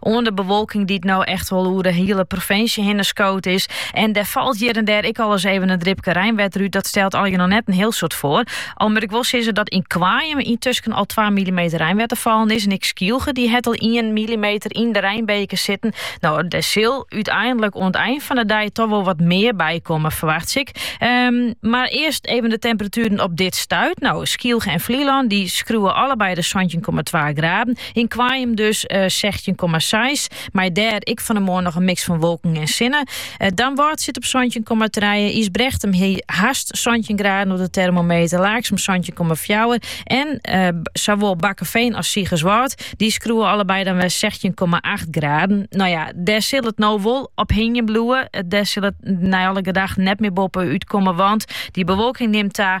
oan de bewolking dy't no echt wol oer de hiele provinsje hinne skood is. En der falt hjir en dêr ek al wolris efkes in dripke reinwetter út. Dat stelt allegear noch net in hiel soad foar. Al moat ik wol sizze dat yn Koarnjum intusken al 2 millimeter reinwetter fallen is. En ek Skylge dy hat al 1 millimeter yn de reinbeker sitten. No, dêr sil úteinlik oan it ein fan de dei dochs wol wat mear by komme, ferwachtsje ik. Ehm, mar earst efkes de temperatueren op dit stuit. No, Skylge en Flylân dy skreaunen allebeide de 17,2 graden. Yn Koarnjum dus sechstjin komma seis, mei dêr ek fan 'e moarn noch in miks fan wolken en sinne. Damwâld sit op santjin komma trije, Ysbrechtum hie hast santjin graden op de termometer, Laaksum santjin komma fjouwer en sawol Bakkeveen as Sigerswâld dy skreaunen allebeide dan wer sechstjin komma acht graden. No ja, dêr sil it no wol op hingjen bliuwe. Dêr sil it nei alle gedachten net mear boppe út komme, want dy bewolking nimt ta.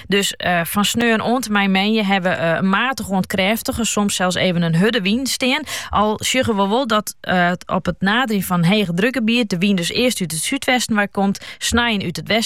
Dus eh, fan sneon oant en mei menje hebben we eh, een matig oant krêftige, soms zelfs even een hudde wyn steen. Al sjuggen we wel dat eh, op het nadering van hege drukgebied de wyn dus eerst uit het zuidwesten waar komt, snijen uit het westen